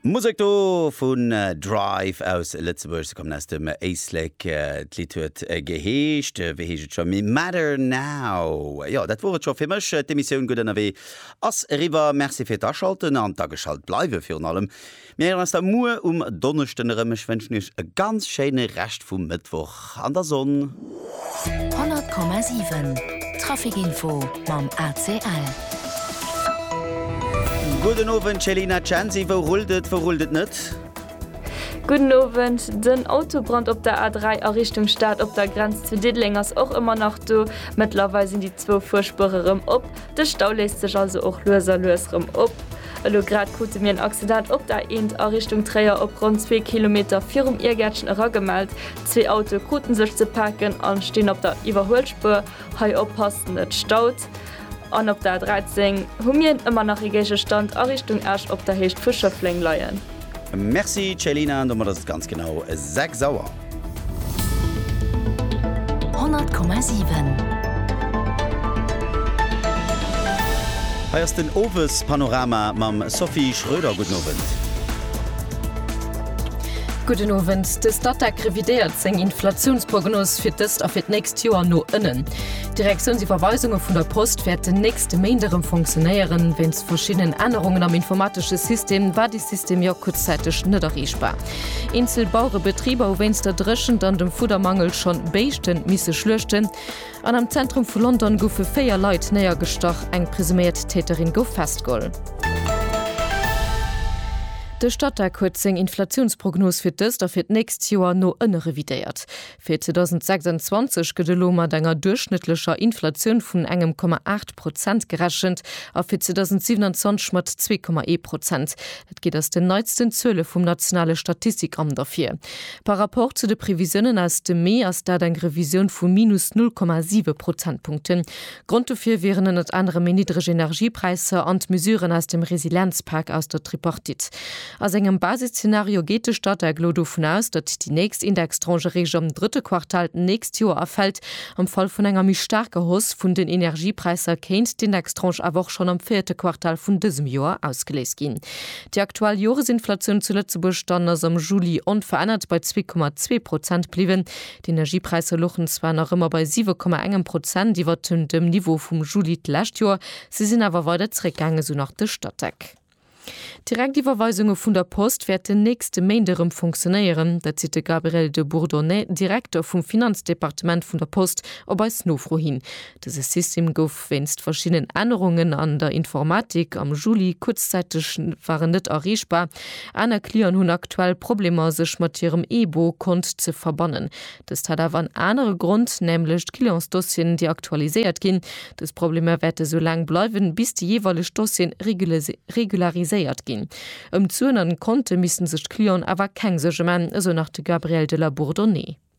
Musek do vun Drive aus Lëtzebuerg. Se kommen aus dem Éislek. D'Lidd huet geheescht, wéi heescht et scho méi, Matter Now. Jo, dat wor et scho fir mech. D'Emissioun Gutt Ënnerwee ass eriwwer. Merci fir d'Aschalten an d'Ageschalt bleiwe virun allem. Mir héieren eis da muer um Donneschden erëm. Ech wënschen iech e ganz schéine Rescht vum Mëttwoch an der Sonn. 100,7 Trafic Info mam ACL. Gudden Owend Céline a Chancy, wou rullt et, wou rullt et net? Gudden Owend, Den Autobrand op der A3 a Richtung Stad op der Grenz zu Diddeleng ass och ëmmer nach do. Mëttlerweil sinn déi zwou Fuerspuere rëm op. De Stau léisst sech also och lues a lues rëm op. Elo grad krute mir en Accident op der A1 a Richtung Tréier op ronn zwee Kilometer virum Iergäertchen eragemellt. Zwee Autoe kruten sech ze paken a stinn op der Iwwerhuelspuer. Hei oppassen, et staut. An op der A13 hu mir ëmmer nach ee Géigestand a Richtung Esch op der Héicht vu Schëffleng leien. Merci Céline, an domat ass et ganz genau 6 Auer. 100,7. Hei ass den Owespanorama mam Sophie Schröder. Gudden Owend. Gudden Owend. De Statec revidéiert seng Inflatiounsprognos fir d'ëst a fir d'nächst Joer no ënnen. D'Direktiounsiwwerweisunge vun der Post wäerten nächste Méint erëm fonctionéieren. Wéinst verschiddenen Ännerungen am informatesche System war dee System jo kuerzzäiteg net erreechbar. Eenzel Bauerebetriber hu wéinst der Dréchent an dem Fuddermangel schonn Béischte misse schluechten. An am Zentrum vu London goufe véier Leit néiergestach, eng presuméiert Täterin gouf festgeholl. De Statec huet seng Inflatiounsprognos fir d'ëst a fir d'nächst Joer no ënne revidéiert. Fir 2026 gëtt elo mat enger duerchschnëttlecher Inflatioun vun engem Komma aacht Prozent gerechent a fir 2027 mat zwee Komma ee Prozent. Dat geet aus den neitsten Zuele vum nationale Statistikamt ervir. Par Rapport zu de Previsiounen aus dem Mee ass dat eng Revisioun vu minus null Komma siwe Prozentpunkten. Grond dofir wieren ënnert anerem méi niddreg Energiepräisser an d'Mesuren aus dem Resilienzpak aus der Tripartite. A sengem Basisszenario geet de Statec elo dovun aus, datt déi nächst Indextranche eréischt am drëtte Quartal d'nächst Joer erfält. Am Fall vun enger méi staarker Hausse vun den Energiepräisser kéint d'Indextranche awer och schonn am véierte Quartal vun dësem Joer ausgeléist ginn. Déi aktuell Joresinflatioun zu Lëtzebuerg dann ass am Juli onverännert bei zwee Komma zwee Prozent bliwwen. D'Energiepräisser luchen zwar nach ëmmer bei 7,1 Prozent iwwer dem Niveau vum Juli d'lescht Joer, se sinn awer weider zeréckgaangen, esou nach de Statec. D'Direktiwwerweisunge vun der Post wäerten nächste Méint erëm funktionéieren. Dat seet de Gabriel de Bourdonnais, Direkter vum Finanzdepartement vun der Post, op eis Nofro hin. Dëse System gouf. Wéinst verschiddenen Ännerungen an der Informatik am Juli kuerzzäiteg war en net erreechbar. Aner Clienten hunn aktuell Problemer sech mat hirem eBo Kont ze verbannen. Dëst hat awer en anere Grond, nämlech d'Clientsdossieren déi aktualiséiert ginn. Dës Problemer wäerte sou laang bleiwen, bis déi jeeweileg Dossieren regulariséiert ginn. Ëm d'Suen an d'Konte missten sech d'Clienten awer keng Suerge man, esou nach de Gabriel de la Bourdonnais.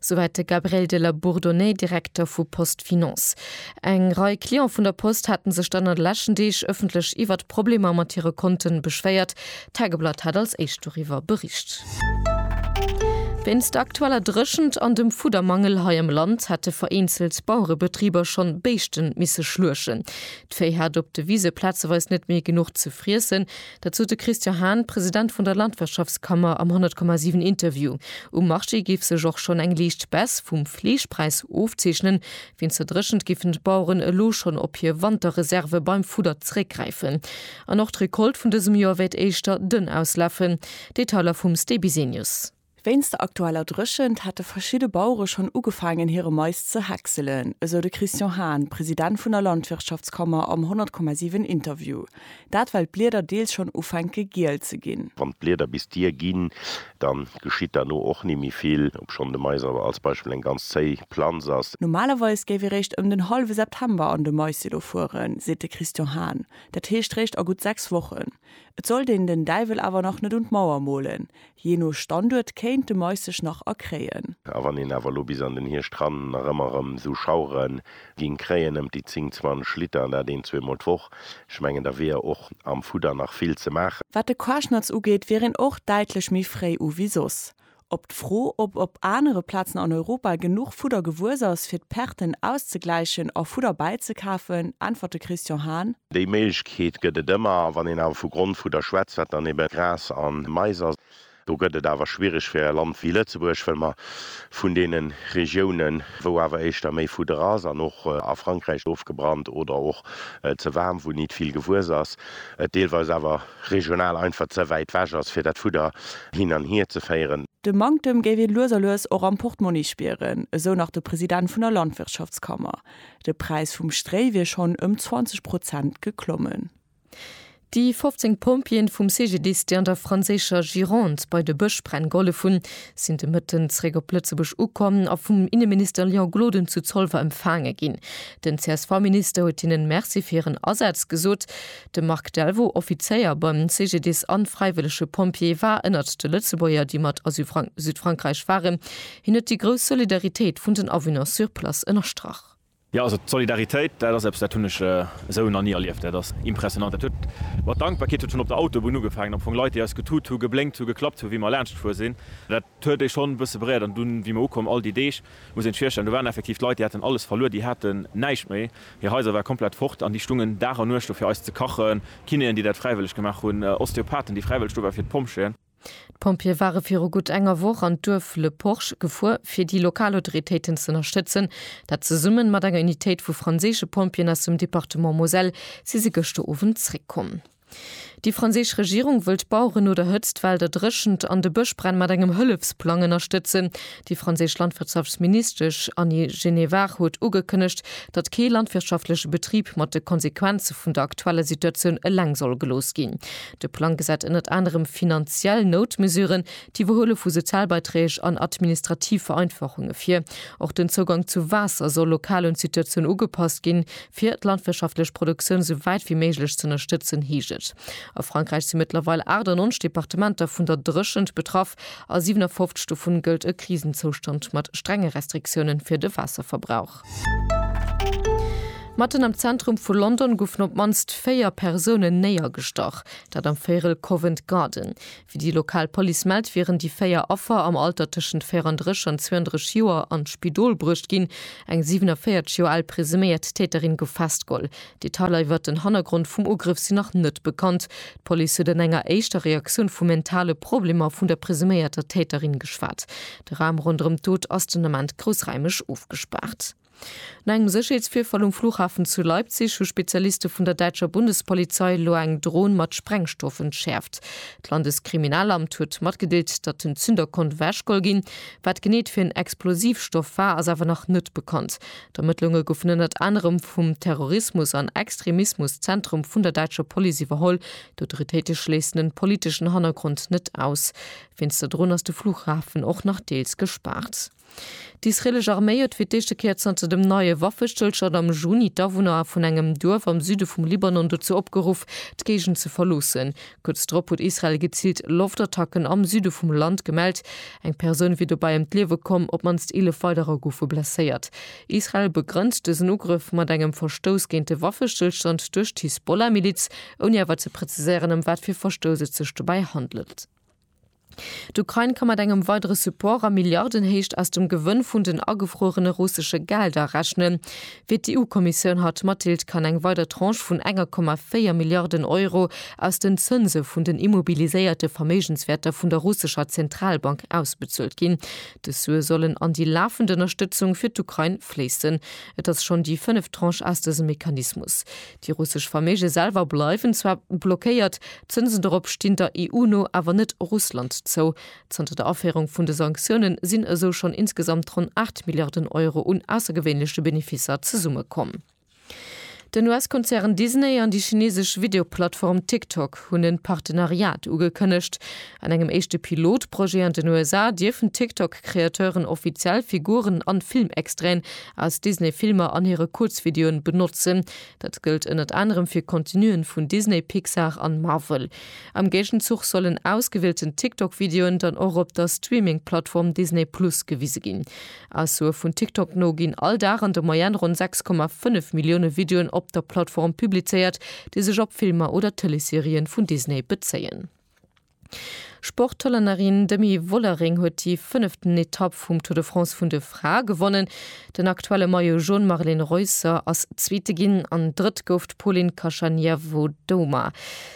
Souwäit de Gabriel de la Bourdonnais, Direkter vu Post Finance. Eng Rei Client vun der Post haten sech dann an de leschten Deeg ëffentlech iwwert d'Problemer mat hire Konten beschwéiert. D'Tageblatt hat als éischt doriwwer bericht. Wéinst der aktueller Dréchent an dem Fuddermangel hei am Land hätte vereenzelt Bauerebetriber schonn Béischten misse schluechen. D'Véi hat op de Wise plazeweis net méi genuch ze friessen. Dat sot de Christian Hahn, President vun der Landwirtschaftskammer am 100,7 Interview. Um Marché géif sech och schonn eng liicht Baisse vum Fleeschpräis ofzeechnen. Wéinst der Dréchent géifen d'Baueren elo schonn op hir Wanterreserve beim Fudder zeréckgräifen. An och d'Recolte vun dësem Joer wäert éischter dënn auslafen. Detailer vum Sté Bisenius. Wéinst der aktueller Dréchent hätte verschidde Bauere schonn ugefaangen hire Mais ze häckselen, esou de Christian Hahn, President vun der Landwirtschaftskammer am 100,7 Interview. Dat well d'Blieder deels schonn ufänke giel ze ginn. Wann d'Blieder bis d'Dier ginn, da geschitt derno och ni méi vill, obschonn de Mais awer als Beispill eng ganz zéi Planz ass. Normalerweis géif ee réischt ëm den hallwe September an de Maissilo fueren, seet de Christian Hahn, dat heescht réischt a gutt sechs Wochen. Et sollt een den Däiwel awer nach net un d'Mauer molen, Jee no Standuert kéint de Mais sech nach erkréien. A wann een awer elo bis an den Hierscht ran nach ëmmer erëm esou Schauere géing kréien, ëm déi 10, 20 Liter, an dat een, zweemol d'Woch, ech mengen, da wier och am Fudder nach vill ze maachen. Wat de Quaschnatz ugeet, wier een och däitlech méi fréi u wéi soss. Op d'Fro, ob op anere Plazen an Europa genuch Fudder gewuess ass, fir d'Perten auszegläichen a Fudder bäizekafen, äntwert de Christian Hahn, Déi Méiglechkeet gëtt et ëmmer, wann een awer vu Grond vu der schwätzt, wat dann ebe Gras a Mais ass. Do gëtt et awer schwiereg fir e Land wéi Lëtzebuerg, well mer vun deene Regiounen, wou awer éischter méi Fudder ass an och a Frankräich ofgebrannt oder och ze waarm, wou nit vill gewuess ass, et deelweis awer regional einfach ze wäit wech ass, fir dat Fudder hin an hier ze féieren. De Manktem géif ee lues a lues och am Portmonni spieren, esou nach de President vun der Landwirtschaftskammer. De Präis vum Stréi wier schonn ëm 20 Prozent geklommen. Déi 15 Pompjeeën vum CGDIS, déi an der franséischer Gironde bei de Bëschbränn gehollef hunn, sinn de Mëtten zeréck op Lëtzebuerg ukomm a vum Inneminister Léon Gloden zu Zolwer empfaange ginn. Den CSV-Minister huet hinnen Merci fir hiren Asaz gesot. De Marc Delvaux, Offizéier beim CGDIS an fräiwëllege Pompjee, war ënnert de Lëtzebuerger, déi mat a Südfrankräich waren. Hien huet déi grouss Solidaritéit vun den Awunner sur place ënnerstrach. Jo, also d'Solidaritéit, dat ass eppes, dat hunn ech esou nach ni erlieft. Dat ass impressionnant. Dat huet mat Dankbarkeet ze tun, op der Autobunn ugefaangen, am Fong Leit, déi eis getut hu, geblénkt hu, geklappt hu, wéi mer laanschtgefuer sinn. Dat huet ee schonn e bësse beréiert. An dunn, wéi mer ukomm, all déi Deeg, muss een sech virstellen, do waren effektiv d'Leit, déi haten alles verluer, déi haten näischt méi, hir Haiser ware komplett fort an déi stungen Dag an Nuecht do fir eis ze kachen, Kinéen, déi dat fräiwëlleg gemaach hunn, Osteopathen, déi fräiwëlleg do waren, fir d'Pompjeeën. D'Pompjeeë ware viru gutt enger Woch an d'Duerf Le Porche gefuer, fir déi lokal Autoritéiten z'ënnerstëtzen. Dat zesummen mat enger Unitéit vu franséische Pompjeeën aus dem Departement Moselle si se gëschter Owend zréckkomm. Déi franséisch Regierung wëllt d'Baueren no der Hëtzt, Well der Dréchent an de Bëschbränn mat engem Hëllefsplang ënnerstëtzen. Déi franséisch Landwirtschaftsministesch Annie Genevard huet ugekënnegt, datt kee landwirtschaftleche Betrib mat de Konsequenze vun der aktueller Situatioun eleng soll gelooss ginn. De Plang gesätt ënnert anerem finanziell Noutmesuren, d'Iwwerhuele vu Sozialbeiträg an administrativ Vereinfachunge vir. Och den Zougang zu Waasser soll lokal un d'Situatioun ugepasst ginn, fir d'landwirtschaftlech Produktioun esou wäit wéi méiglech ze ënnerstëtzen, heescht et. A Frankräich si mëttlerweil 98 Departementer vun der Dréchent betraff. A 57 dovun gëllt e Krisenzoustand mat strenge Restriktiounen fir de Waasserverbrauch. Matten am Zentrum vu London goufen op d'mannst véier Persounen néiergestach, dat am Véirel Covent Garden. Wéi déi lokal Police mellt, wieren déi véier Affer am Alter tëschent 34 an 32 Joer an d'Spidol bruecht ginn. Eng 47 Joer al presuméiert Täterin gouf festgeholl. Detailer iwwert den Hannergrond vum Ugrëff sinn nach net bekannt. D'Police huet an enger éischter Reaktioun vu mentale Problemer vun der presuméierter Täterin geschwat. De Raum ronderëm d'Dot ass den Ament groussraimeg ofgespaart. No engem Sécherheetsvirfall um Flughafen zu Leipzig hu Spezialiste vun der däitscher Bundespolizei elo eng Dron mat Sprengstoff entschäerft. D'Landeskriminalamt huet matgedeelt, datt den Zünder konnt ewechgeholl ginn. Wat genee et fir en Explosivstoff war, ass awer nach net bekannt. D'Ermëttlunge goufen ënnert anerem vum Terrorismus an Extremismus Zentrum vun der däitscher Police iwwerholl. D'Autoritéite schléissen en politeschen Hannergrond net aus. Finster drun ass de Fluchhafen och nach deels gespaart. D'israelesch Arméi huet fir d'éischte Kéier zanter dem neie Waffestëllstand am Juni d'Awunner vun engem Duerf am Süde vum Libanon dozou opgeruff, d'Géigend ze verloossen. Kuerz drop huet Israel geziilt Loftattacken am Süde vum Land gemellt. Eng Persoun wier dobäi ëm d'Liewe komm, op d'mannst 11 weiderer goufe blesséiert. Israel begrënnt dësen Ugrëff mat engem Verstouss géint de Waffestëllstand duerch d'Hisbollah-Miliz, ouni awer ze preziséieren, ëm wat fir Verstouss et sech dobäi handelt. D'Ukrain ka mat engem weidere Support a Milliardenhéicht aus dem Gewënn vun den agefruerene russesche Gelder rechnen, wéi d'EU-Kommissioun haut matdeelt, kann eng weider Tranche vun 1,4 Milliarden Euro aus den Zënse vun den immobiliséierte Verméigenswäerter vun der russescher Zentralbank ausbezuelt ginn. Dës Sue sollen an déi lafend Ënnerstëtzung fir d'Ukrain fléissen. Et ass schonn déi fënneft Tranche aus dësem Mechanismus. Déi russesch Verméige selwer bleiwen zwar blockéiert, d'Zënsen dorop stinn der EU no awer net Russland zou. Zanter der Aféierung vun de Sanktioune sinn esou schonn insgesamt ronn 8 Milliarden Euro un aussergewéinleche Benefisser zesummekomm. Den US-Konzern Disney an déi chinesesch Videoplattform TikTok hunn en Partenariat ugekënnegt. An engem éischte Pilotprojet an den USA dierfen d'TikTok-Kreateuren offiziell Figuren an Filmextraiten aus Disney-Filmer an hire Kuerzvideoen benotzen. Dat gëllt ënnert anerem fir Contenuen vun Disney, Pixar an Marvel. Am Géigenzuch sollen ausgewielten TikTok-Videoen dann och op der Streaming-Plattform Disney Plus gewise ginn. Aussoe vun TikTok no ginn all Dag an der Moyenne ronn 6,5 Millioune Videoen op der Plattform publizéiert, déi sech op Filmer oder Tëleesserien vun Disney bezéien. D'Sport-Hollännerin Demi Vollering huet déi fënneften Etapp vum Tour de France vun de Frae gewonnen. Den aktuelle Maillot Jaune Marlen Reusser ass Zweete ginn an Drëtt gouf d'Polin Kashaniavodoma.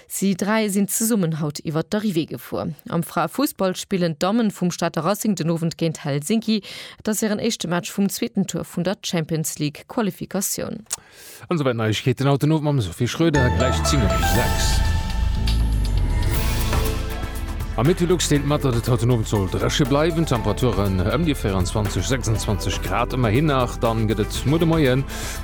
Si dräi sinn zesummen haut iwwer d'Arrivée gefuer. Am Frae-Fussball spillen d'Dammen vum Stater Racing den Owend géint Helsinki. Et ass hiren éischte Match vum zweeten Tour vun der Champions League-Qualifikatioun. An souwäit Neiegkeeten haut den Owend mam Sophie Schröder, gläich 10 op 6. Am Equilux deelt mat, datt et haut den Owend soll dréche bleiwen, Temperaturen ëm déi 24, 26 Grad. Ëmmerhin nach, dann gëtt et muer de Moie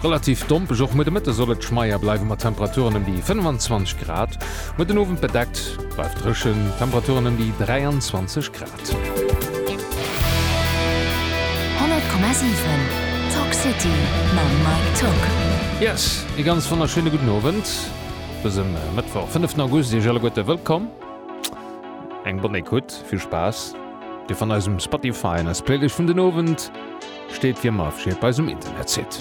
relativ dompeg. Och muer de Mëtte soll et schmeier bleiwen, mat Temperaturen ëm déi 25 Grad. Muer den Owend bedeckt, bleift dréchen, Temperaturen ëm déi 23 Grad. 100,7 Talk City mam Mike Tock. Yes, ee ganz wonnerschéine gudden Owend dësem Mëttwoch 5 August. Iech alleguerte wëllkomm, eng Bonne Ecoute, vill Spaass. Dir fannt eis um Spotify an eis Playlëscht vun den Owend steet wéi ëmmer afegéiert bei eis um Internetsite.